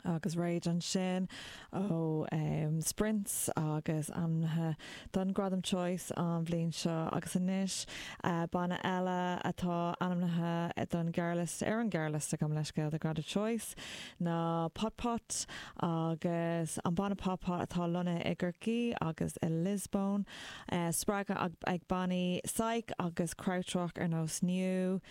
Agus Rage ansin ó Sprints agus ainmnithe don Ghradam Choice an bhliain seo agus anois banna eile atá ainmnithe don ghearrliosta, ar an ngearrliosta, gabh mo leithscéal, do Ghradam Choice ná Pot Pot agus an banna Pot Pot atá lonnaithe i gCorcaí agus i Lisbon. Spreagtha ag bannaí psych agus krautrock ar nós Neu.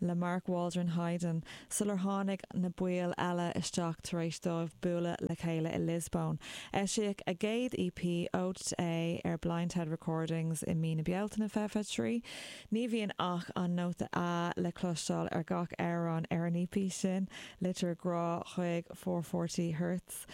le Mark Waldron-Hyden sular tháinig na baill eile isteach tar éis dóibh bualadh le chéile i Lisbon. Eisíodh a gcéad EP, Ode to A, ar Blindhead Recordings i mí na Bealtaine, fiche fiche trí. Ní bhíonn ach an nóta A le cloisteáil ar gach amhrán ar an EP sin, litir ghrá chuig four-forty Hertz.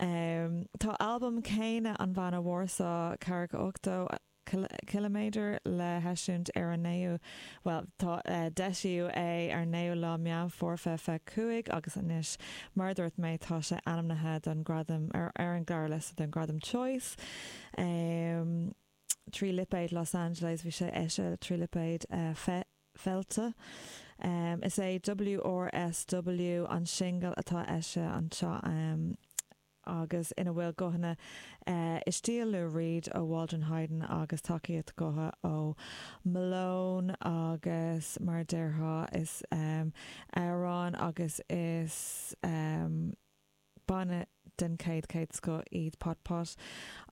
Tá albam céanna an bhanna Warsaw, 480, ciliméadar le heisiúint ar an naoú, bhuel, tá, d'eisíodh é ar naoú lá Meán Fómhair fiche fiche cúig agus anois, mar a dúirt mé, tá sé ainmnithe don ghradam, ar an ngearrliosta don ghradam Choice, trí lipéad Los Angeles, bhí sé eisithe trí lipéad Felte. Is é WRSW an singil atá eisithe anseo. agus ina bhfuil guthanna i stíl Lou Reed ó Waldron-Hyden agus tacaíocht ghutha ó Malone agus, mar a déarfá, is amhráin agus is banna den chéad chéad scoth iad Pot Pot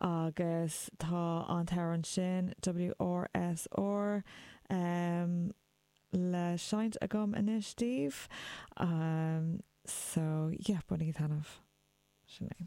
agus tá an t-amhrán sin, WRSR. le seinnt agam anois daoibh so yeah, bainigí taitneamh! Sin é.